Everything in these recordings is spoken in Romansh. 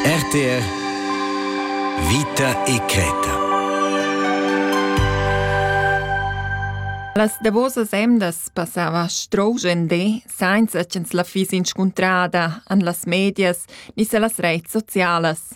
RTR Vita e creta Las davosas emdas passava strougende, sainza ch'ins la fiss inscuntrada an las medias ni se las reits socialas.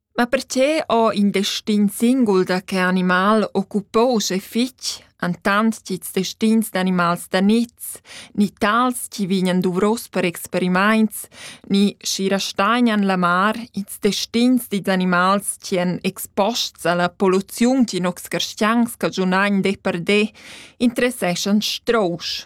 Ma perche ho in destin singul da che animal occupouse fich entant ch'ils destins d'animals da niz, ni tals chi vegnan duvros per experimaints, ni schi rastagnan la mar, ils destins dils animals chi èn exposts alla polluziun ch'in nocs carstians cagiunagn de per de, interesseschan strousch.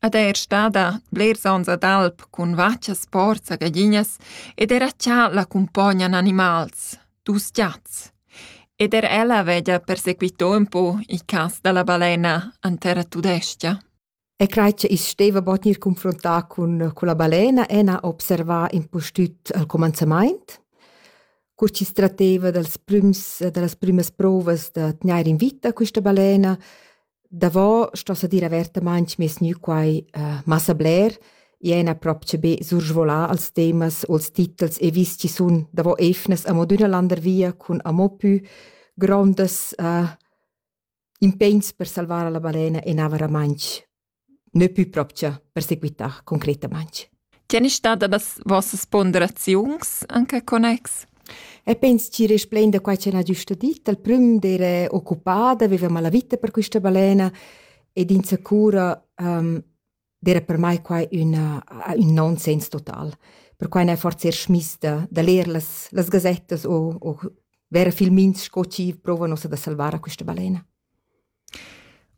Ed eir stada blers ons ad alp cun vachas porza gaglinas ed era cha la cumpognan animals, dus giats. Ed er ella veglia persequitò ün po il cas da la balena an terra tudescha. E crai che i's steva bod gnir confrontà cun, cun la balena e n'ha observà impustüt al comanzamaint, cur chi's tratteva dals prüms, da las prümas prouvas da tgnair in vita quista balena Davo sto sa dir avertamaing meis gnü quai massa bler. I ena propcha be sursvolà als temas o als titels e vis chi sun davo eivnas amo d'üna landervia cun amo pü grondas impegns per salvar la balena e na varamaing, nö pü propcha per seguità concretamaing. Tg'en è stada las vossas ponderaziuns anc en connex? E pens tgi resplain da quai ch'el ha giusto dit. Al prüm d'era occupada, veveva la vita per quista balena ed insacura um, d'era per mai quai üna, ün nonsens total. Perquai n'è forse er schmiss da, da leer las, las gazettas o, o vera filmins sco chi provano da salvar a questa balena.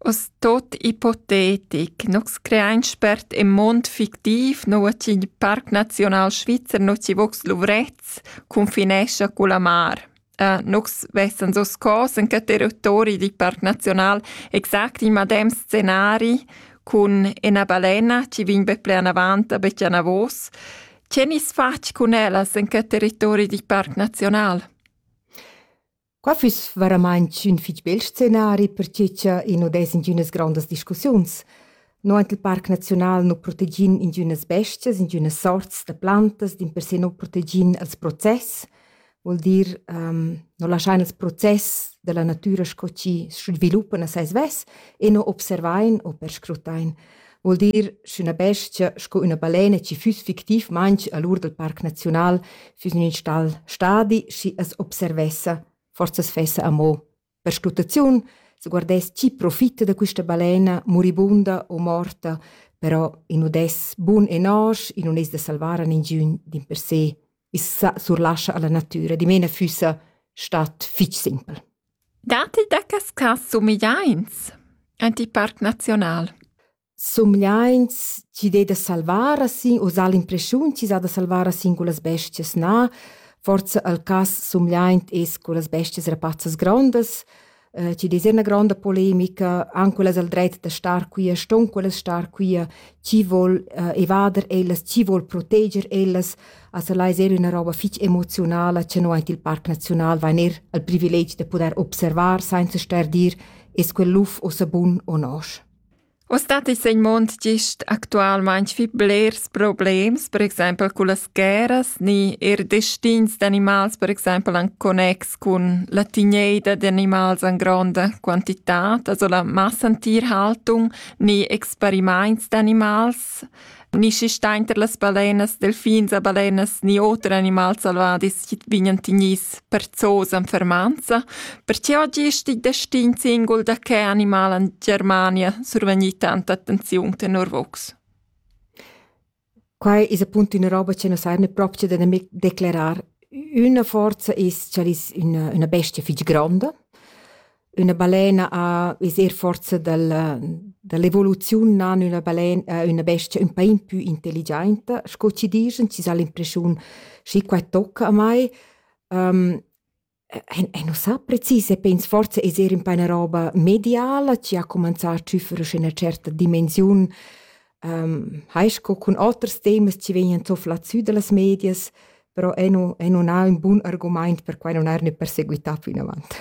Oz tuot ipotetic, nus creain spert ün muond fictiv, nouva chi il Parc Naziunal Svizzer no chi vogs luvrets cunfinescha culla mar. nus vessans hoz cos in que territori dil Parc Naziunal exact il madem scenari cun üna balena chi vegn be pler anavant a be chi anavos. Che gnisse fach cun ellas in que territori dil Parc Naziunal? Qua füss varamaing ün fich bel scenari per che cha i nu dess ingünas grondas discussiuns. No aint il Parc Naziunal nu protegin ingünas bestias, ingünas sorts da plantas, dimpersè nu protegin els process, voul dir nu laschain ils process da la natüra sco chi sviluppan a sai svess e nu observain u perscrutain. Vuol dir, sch'üna bestia sco üna balena chi füss fictivmaing a l'ur dal Parc Naziunal füss in ün stal stadi, schi as observessa, forsa as fessa amo. Per sclutaziun se guardess chi profitta da quista balena, muribunda o morta, però in udess bun e nosch, i nun es da salvar a ningiün dimpersè. i's sa surlascha alla natüra. Dimena füssa stat fich simpel. Dati da cas cas somigliaints antiparc nazional? Somigliaints chi dé da salvar a sin o sà l'impreschiun chi s'ha da salvar a sin culas bestias na. Forza al cas somigliaint es cu las bestias rapazzas grondas, eh, ci des una grande polemica an quellas al dret da star quia ston quellas star quia chi vol eh, evader ellas chi vol proteger ellas also lai ser una roba fich emotionala che no ait il parc nacional vain er al privilegi de poder observar senza ster dir es quel luf o sabun o nosch Uss dat i's in mund gist actualmaing fich blers problems, per exaimpel cullas guerras, ni eir destins d'animals, per exaimpel in connex cun la tigneida d'animals in gronda quantità, also la massantierhaltung, ni experimaints d'animals. Ni schi stainter las balenas, delfins e balenas, ni oter animals salvadis chi vignan tignis per zoos en fermanza, perche oggi est il destin singul da che animal en Germania survegni tanta attenziun tenor vox. Quai es appunto üna roba che nos eirne proprio da nemic declarar. Üna forza es ch'el es üna, üna bestia fich gronda, üna balena ha es eir forsa dal da l'evoluziun nan üna balen äh, üna bestia ün pa in pü intelligiainta, sco chi dischan, chi s'ha l'impreschiun schi qua tocca a mai. Ehm, e e nu sa precis e pens forsa es eir ün pa üna roba mediala chi ha comanzà a tschüffere scu üna certa dimensiun, ehm, hai sco cun oters temas chi vegnan zoflà sü da las medias, però ei nu, ei nun ha ün bun argumaint per quai non er ne perseguità plinavant.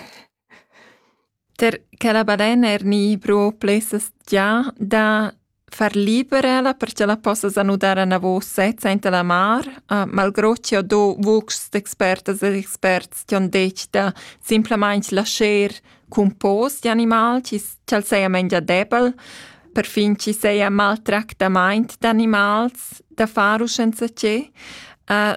Per che la balena er ni pro plessas già da far liberela perché la possa sanudare a navò sezza inte la mar, uh, malgrò che ho do vox d'expertas e experts che han detto da simplamente lasciar cun pos di animal chi ch'al seia mengia debel, perfin chi seia maltractamaint d'animals da far u senza che, uh,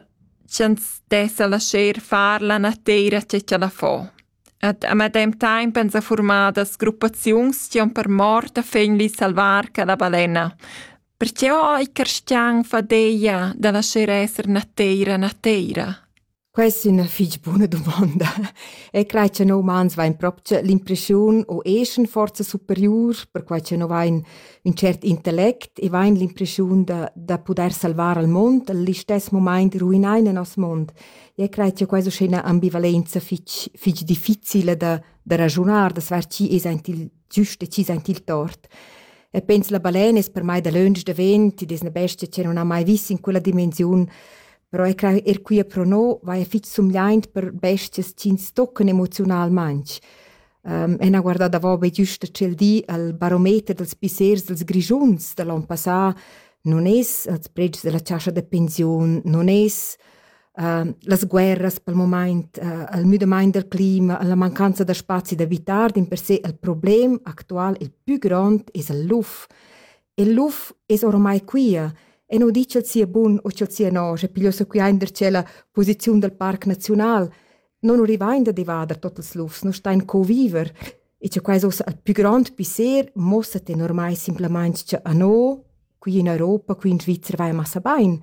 ch'ans dessa lascher far la nateira che ch'ella fo. Ed a medem taimp ans ha formadas gruppaziuns chi han per mort a fegnli salvar quella balena. Perché ho i carstian fadeia da lascher esser nateira nateira? Quest è ina fitg buna dumonda. E crai che noi umans vain proprio l'impression o eschan forza superiur, perquai che noi vain ün tschert intellect e vain l'impression da, da pudair salvar al mond, al istess momaint ruinar il nos mond. E crai che questa è üna ambivalenza fitg, fitg difficile da, da ragiunar, da sver chi es aint il, Giust decis aint il tort. E pens la balen es per mai dalöntsch davent, id es na bestia che non ha mai vis in quella dimensiun, però er, er quia pro no vaja fich sumgliaint per bestias chi'ns toccan emoziunalmaing. Um, e n'ha guardà davo be güsta tschel di al barometer dals pissers dels Grischuns da l'on passà, non es als predgs della chascha da pensiun, non es Ehm, las guerras pel mumaint, ehm, il müdamaint del clima, la mancanza da spazi da vitar dimpersè il problem actual il pü grond es il luf. Il luf es oramai quia e nu di ch'el sia bun u ch'el sia no, sche pigliossa quia in der tschella posiziun dal parc naziunal. non rivain da devader tot ils lufs, non stain co viver. E che quais ussa a più grand pisser mossa te normai simplamain che a no, qui in Europa, qui in Svizzera vai massa bain.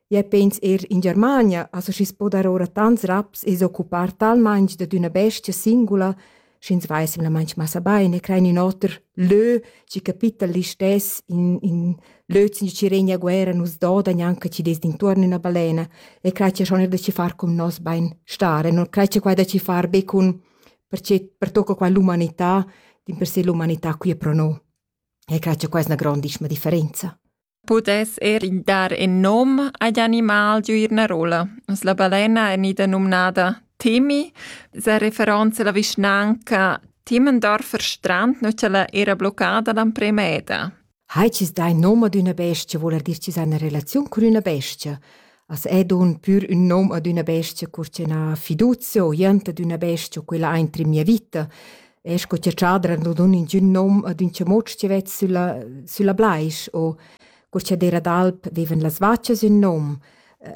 Ja pens er in Germania, also schi s poda ora tants raps e s'occupar talmain d'una bestia singula, sch'ins veissem la manch massa bain e crein ün oter lö, chi capitta l'istess, in, in lö chi regna a guerra nus doda gnanca chi dess d'intuorn üna balena e crai cha schon er da ci far cun nos bain stare, non crai cha quai da ci far be cun perche pertocca qua l'umanità, dimpersè l'umanità qui è pro no. E crai cha quai es 'na grandissima differenza. pudess eir dar in nom agl animal giuir üna rolla. La balena è gnida numnada Temi, sa referanza alla vischnanca Timmendorfer Strand, nu ch'ella era bloccada l'amprema eda. Hai cis dai nom ad üna bestia, voul dir cis ha una relaziun cun üna bestia. As è dun pür ün nom ad üna bestia cur ch'eu n'ha fiduzia o jent ad üna bestia, quella aint in mia vita. E sco cha tschadra nu dun ingün nom ad ün chamuotsch chi vet sülla, sülla blais o cur cha d'eira d'alp devan las vachas ün nom.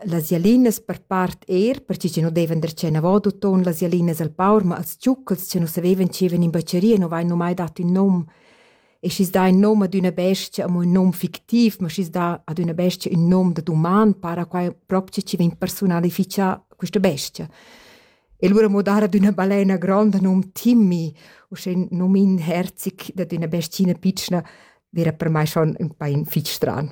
Las jalinas per part eir, perche chi nu devan der tschenavot uton las jalinas al paur, ma als giucchels chi nu savevan chi evan in bacheria nu vain nu mai dat ün nom. e schi's dà ün nom ad üna bestia, amo ün nom fictiv, ma schi's dà ad üna bestia ün nom da duman, para quai propcha chi vegn persunalifichà quista bestia. E lura mo dar ad üna balena gronda nom Timmy, uschè ün nom inherzic dad üna bestina pitschna, vera per mai schon ün pain fich stran.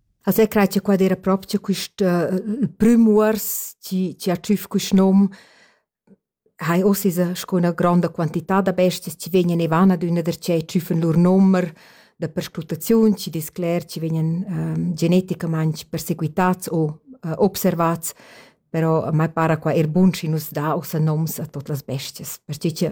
Also eg crai che quad era proprio quist uh, prüm uors chi, chi ha tschüf quist nom. Hai oss esa sco üna gronda quantità da bestias chi vegnan e van ad üna darcheu tschüffen lur nomer da perscrutaziun, chi discler chi vegnan um, geneticamaing perseguitats o uh, observats però mai para qua er bun schi nus da ossa noms a tot las bestias, perche che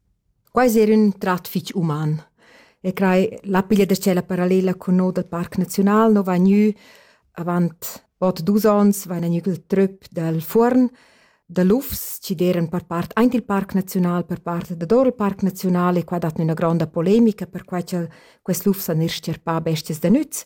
Quai es eir ün trat fich uman e crai la piglia da tschella parallela cun no dal Parc Naziunal no vain gnü avant bod dus ons vaina gnü il tröp dal fuorn da lufs chi d'eiran per part aint il Parc Naziunal, per part dador il Parc Naziunal e qua dat gnüna gronda polemica perquai cha'l quels lufs han eir s-cherpà bestias da nüz.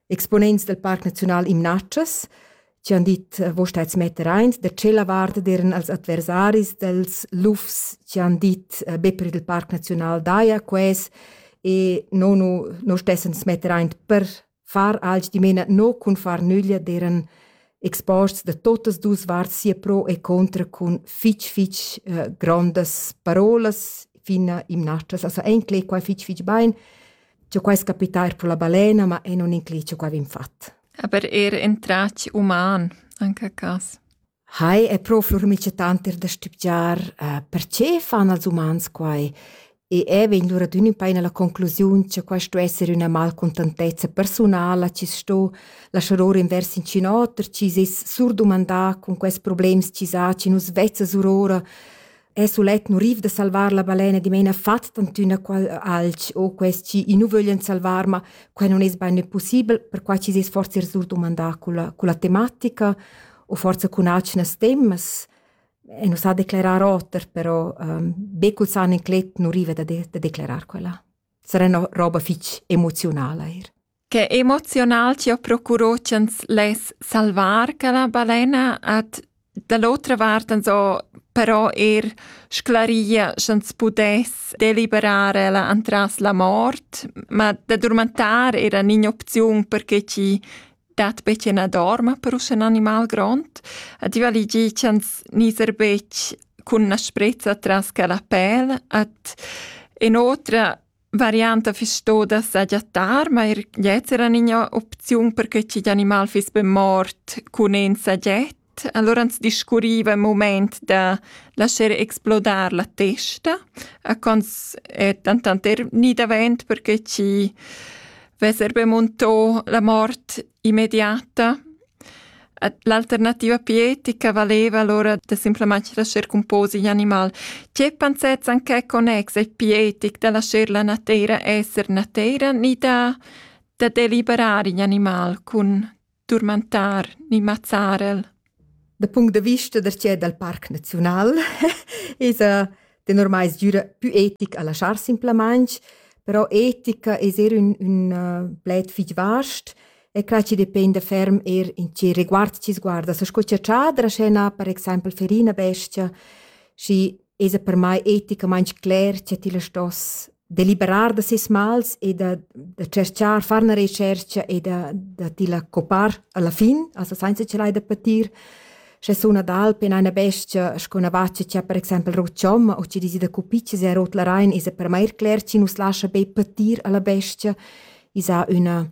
exponents del Parc Naziunal Imnatschas, chi han dit eh, «Vo stais metter aint da tschella vart deren als adversaris dels lufs chi han dit eh, be per il Parc Naziunal daja ques e no nu no stessens metter aint per far alch dimena no cun far nüglia deren exposts da totas dus varts sia pro e contra cun fich fich eh, grandas parolas fin a imnatschas. Also enclei qua fich fich bain Giò quai es capità eir pro la balena, ma e nun inclid cha quai vegn fat. Aber er in tratg uman, anche a cas. Hai è proprio mica tant er da stipgiar uh, perché fan als umans quai e è vegn lura d'ün in paina la conclusiun che quai sto esser üna malcontentezza personala chi sto lasciar or invers in cin oter chi s'es surdumandà con quels problems chi sa chi nus vezzas urora e sulet nu riv da salvar la balena dimena fat tantüna qual alch o quest chi i nu vöglian salvar, ma quai non es bain possibel, perquai chi s'es forsa surdumandà culla, culla tematica o forsa cun atgnas temas. E nu sa declerar oter, però ehm, be cul san inclet nu riva da, de, da declerar quella. Sarà üna roba fich emoziunala eir. Che emozional chi ho procurò ch'ans less salvar quella balena ed da l'otra vart ans ho però eir sclaria sch'ans pudess deliberar ella antras la mort, ma da durmentar era ün'opziun perche chi dat be chi na dorma per usche ün animal grond ed i vali dir ch'ans nizer betg cun na sprezza tras quella pel ed inoltre varianta fiss stoda sagiattar, ma er gliez era ina opziun per che ch'igl animal fiss be mort cun in sagiet. Allora ans discurriva il moment da lascher explodar la testa, a cons è dentant er ni davent perché chi vesser be muntò la mort immediata. L'alternativa pietica valeva allora da simplamain lascher cumposer igl animal. Tge pensets en quai connex è pietic da lascher la nateira esser nateira ni da, da deliberar igl animal cun turmentar ni mazzar el? Da punct de vista da tgè dal Parc Naziunal esa tenor mai sgüra pü etic a laschar simplamaing, però etica es eir ün, ün uh, pled fich vast E quai chi dependa ferm eir in chi reguard chi's guarda sco chatschader a scena, per exaimpel Ferina Bestia, schi esa per mai eticamaing cler cha tilla stoss deliberar da seis mals e da da tscherchar, far 'na retschercha e da da tilla copar alla fin, also sainza chi l'hai da patir. Sche suna d'alp in aina bestia sco 'na vaccia chi ha per exaimpel rot chomma o chi desi da cupitschas e rot la rain, esa per mai eir cler chi nu's lascha be patir alla bestia. Esa üna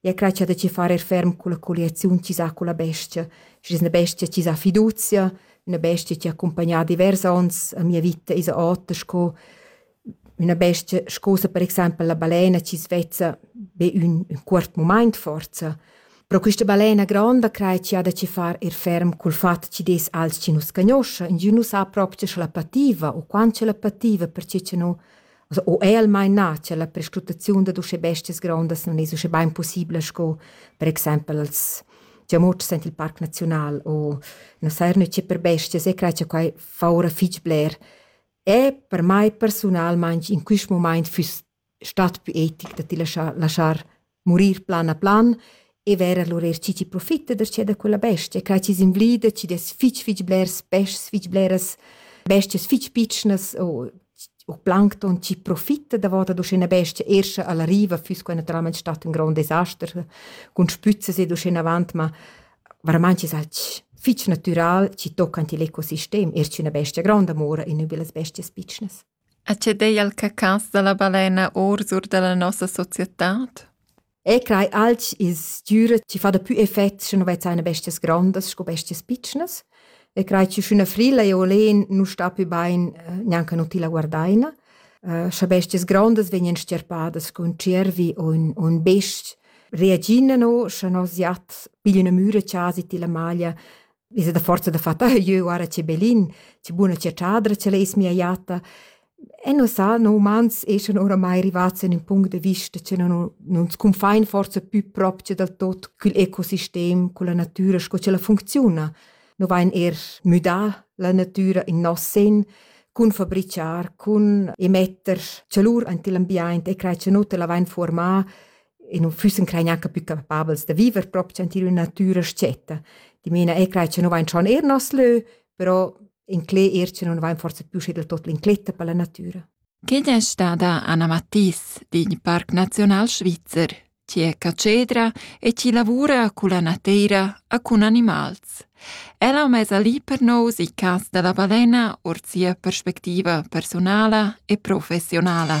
e ha cratscha da ci far er ferm culla colliaziun chi sa culla bestia, schi es üna bestia chi sa fiduzia, üna bestia chi ha accumpagnà divers ons a mia vita isa ota sco üna bestia scosa per exaimpel la balena chi svezza be ün, ün cuort mumaint forza. Però quista balena gronda crai chi ha da ci far ir ferm cul fat chi des als chi nu scagnoscha. Ingün nu sa propcha scha la pativa u quant cha la pativa perche cha nu Also, o el maina cha la perscrutaziun dad uschè bestias grondas non es uschè bain pussibla sco per exaimpel als giamotschs aint il Parc Naziunal o na saja gnütschi per bestias e crai cha quai fa oura fich bler. E per mai persunalmaing in quist mumaint füss stat pü etic da ti laschar laschar Murir plan a plan e ver lur erschi chi profita darcheu da quella bestia, crai chi's invlida, chi dess fich fich blers peschs, fich bleras bestias fich pitschnas o u plancton chi profita davot ad uschè üna bestia er scha ella riva füss quai natüralmaing stat ün grond desaster cun spüzzas ed uschenavant, ma veramaing es alch fich natüral chi tocca ant il ecosistem, er sch'üna bestia gronda mora in üna da las bestias pitschnas. E che dei al cacans dalla balena orsur dalla nossa societad? E crei alch il stüra chi fa dapü effet sche nu vezza eine bestias grondas sco bestias pitschnas e crei chi sch'üna frilla e olen nu sta pü bain gnanca nu tilla guardaina. Scha bestias grondas vegnan stierpadas cun tschiervi u ün ün best, reagina no, scha nos jat piglia üna müra chasi tilla maglia Visa da forza da fat, ah, jeu guarda che belin, che buna che chadra, che leis mia jatta. E non sa, no umans eschan oramai rivats in un punct de vista che non, non sconfein forza più proprio del tot cul ecosistem, con la natura, sco che la funziona. No vain er müdà la natura in nos sen, cun fabriciar, cun emetter celur ante l'ambiente e crai che non te la vain formà e non füssen crei neanche più capabels da viver proprio in una natura scetta. Di mena e crei che non vain schon er nos lö, però in cle er che non vain forse più sche del tot l'incletta per la natura. Quién è stada Anna Matisse din Parc Nacional Svizzer, ci è cacedra e ci lavora con la nateira a con animals. Ella mesa lì per nos i cas della balena or sia perspettiva personale e professionale.